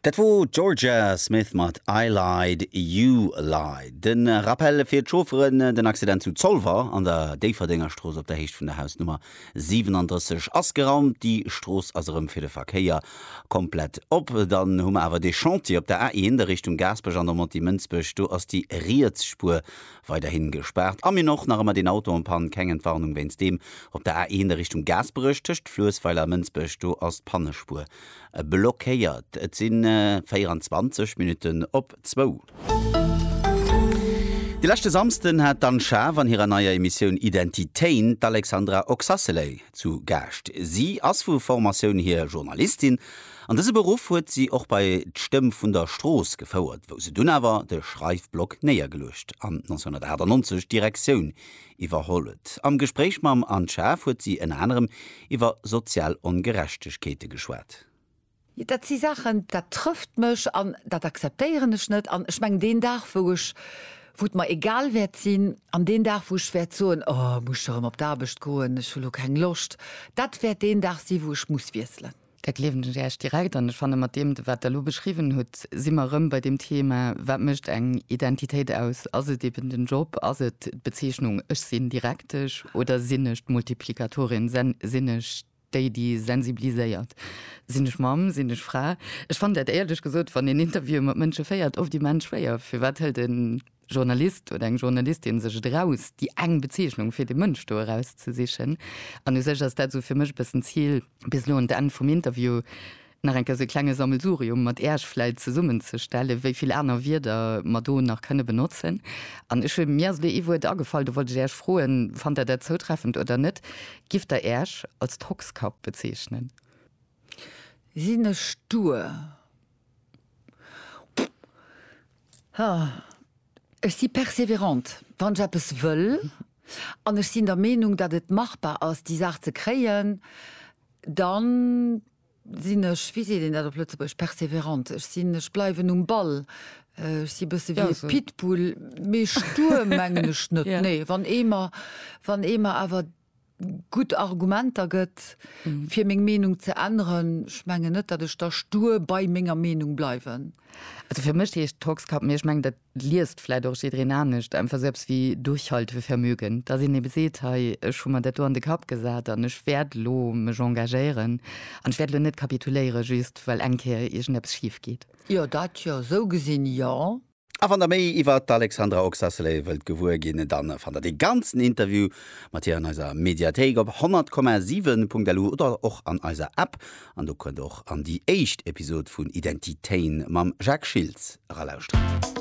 Dat wor d'Jorja Smith mat I Lied, You Lied. De Rappell fir d'Chaufferen, Den Accident zu Zolwer an der Déifferdéngerstrooss op der Héicht vun der Hausnummer 37 ass geraumt. Déi Strooss ass erëm fir de Verkéier komplett op. Dann hu mer awer dee Chantier op der A1 a Richtung Gaasperech an der Montée-Mënsbech. Do ass déi riets Spuer Weiderhin gespaart a mir och nach emmer deen Auto en panne, keng Entwarnung wéinst deem op der A1 a Richtung Gaasperech tëscht Fluessweiler a Mënsbech, do ass d'Pannespuer blockéiert. Et sinn 24 Minutten op zwou. De leschte Samsden hat d'Anne Schaaf an hirer neier Emissioun Identitéin d'Alexandra Oxacelay zu Gaascht. Si ass vu Formatioun hier Journalistin An dëse Beruff huet si och bei d'Stëmm vun der Strooss gefouert, wou se dunn awer de Schreifblock néiergeluecht an 1998 d'Direktioun iwwerholl huet. Am Gespréich mam Anne Schaaf huet si ënner anerem iwwer sozial Ongerechtegkeete geschwat. Dat si Saachen, dat trëfft mech an dat akzeptéieren ech net. An ech mengen, deen Dag, wou ech, wou et mer egal wäert sinn, an deen Dag, wou ech wäert soen, Oh, muss ech erëm op d'Aarbecht goen, ech hu lo keng Loscht, dat wäert deen Dag si wou ech muss wiesselen. Da gleewen ech Äech direkt an. Ech fanne mat deem, wat Der elo beschriwwen hutt, si mer erëm bei deem Thema, wat mécht eng Identitéit aus? Ass et eben den Job? Ass et d'Bezeechnung, ech sinn Direktesch oder sinn ech d'Multiplikatorin, sinn ech déi, déi sensibiliséiert? Sinn ech Mamm, sinn ech Fra? Ech fannen dat éierlech gesot, wann een Interviewen mat Mënsche féiert, oft immens schwéier. Firwat hëlt en Journalist oder eng Journalistin sech et eraus, déi eng Bezeechnung fir dee Mënsch do erauszesichen. An u sech ass dat esou fir mech e bëssen d'Zil, bis elo un d'Enn vum Interview nach eng Kéier esou e klenge Sammelsurium mat Iech vläit zesummenzestellen, wéi vill aner Wierder mer do nach kënne benotzen. An ech hunn, mir ass elo ee Wuert agefall, do wollt ech Iech froen, fannt Der dat zoutreffend oder net, Gift Der Iech als Tockskapp bezeechnen? Sinn ech stur? Ech si perseverant, wann ech eppes wëll an ech sinn der Meenung, datt et machbar ass, déi Saach ze kréien, da sinn ech, wéi seet een dat op Lëtzebuergesch, perseverant, ech sinn, ech bleiwen um Ball, ech si e bësse wéi e Pitbull, mee stur mengen ech net, nee. Wann ee mer, wann ee mer awer gutt Argumenter gëtt, fir meng Meenung ze änneren. Ech mengen net, datt ech da stur bei menger Meenung bleiwen. Also fir mech heescht Tockskapp, mee ech mengen, dat liest vläit och jiddwereen anescht, einfach sou eppes wéi Durchhaltevermögen, datt een ebe seet, hei, ech hu mer dat do an de Kapp gesat an ech wäert elo mech engagéieren an ech wäert elo net kapituléieren, just well eng Kéier iergendeppes schif geet. Jo, dat jo. Sou gesinn, jo. A wann der méi iwwert d'Alexandra Oxacelay wëllt gewuer ginn, dann fannt der dee ganzen Interview mat hir an eiser Mediathéik op 100,7.lu oder och an eiser App. An do kënnt der och an déi éischt Episode vun Identitéin mam Jacques Schiltz eralauschteren.